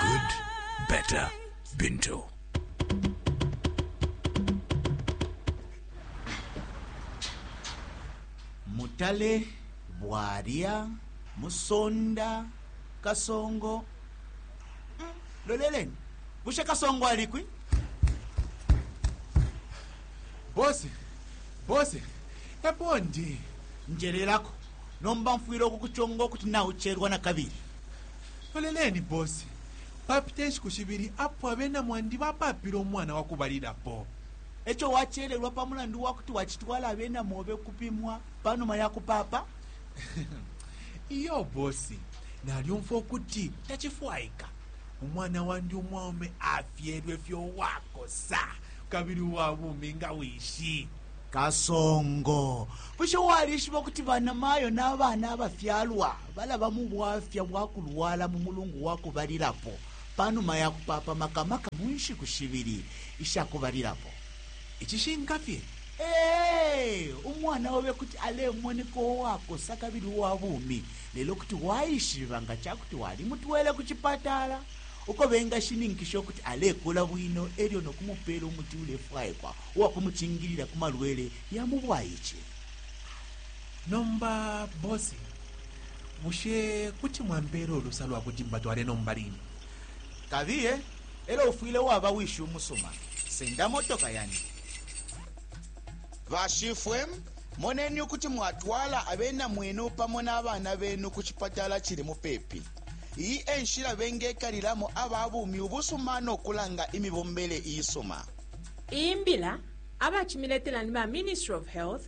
Good, better, Bintu. mutale bwalya musonda kasongo Mm, loleleni bushe kasongo alikwi bosi bosi epo ndi njelelako nomba mfwile ukukuchonga ukuti naucherwa na kabili Loleleni, boss. Papite nshiku shibili apo abena mwandi bapaapile umwana wa kubalilapo. E co wacelelwa pa mulandu wa kuti wacitwala abena mobe ukupimwa pa numa ya kupaapa? Iyo, boss. Nalyumfwa ukuti tacifwaika. Umwana wandi umwaume afyelwe fye uwakosa kabili uwa bumi nga wishi. Kasongo, bushe walishiba ukuti banamayo na bana abafyalwa balaba mu bwafya bwa kulwala mu mulungu wa kubalilapo pa numa ya kupaapa maka maka mu nshiku shibili isha kubalilapo. Icishinka fye, ee, umwana obe kuti alemoneka uwakosa kabili uwa bumi, lelo kuti waishiba nga ca kuti walimutwele ku cipatala uko bengashininkisha ukuti alekula bwino e lyo no kumupeela umuti ulefwaikwa uwa kumucingilila ku malwele ya mu bwaice. Nomba bosi, bushe kuti mwampeela ulusa lwa kuti mbatwale nomba line? Kabiye, e lyo ufwile waba wishi umusuma. Senda motoka yandi. Bashifwe, moneni ukuti mwatwala abena mwenu pamo na bana benu ku cipatala cili mupepi. Iyi e nshila bengekalilamo aba bumi ubusuma no kulanga imibombele iisuma. Iyi mbila abacimiletela ni ba Ministry of Health,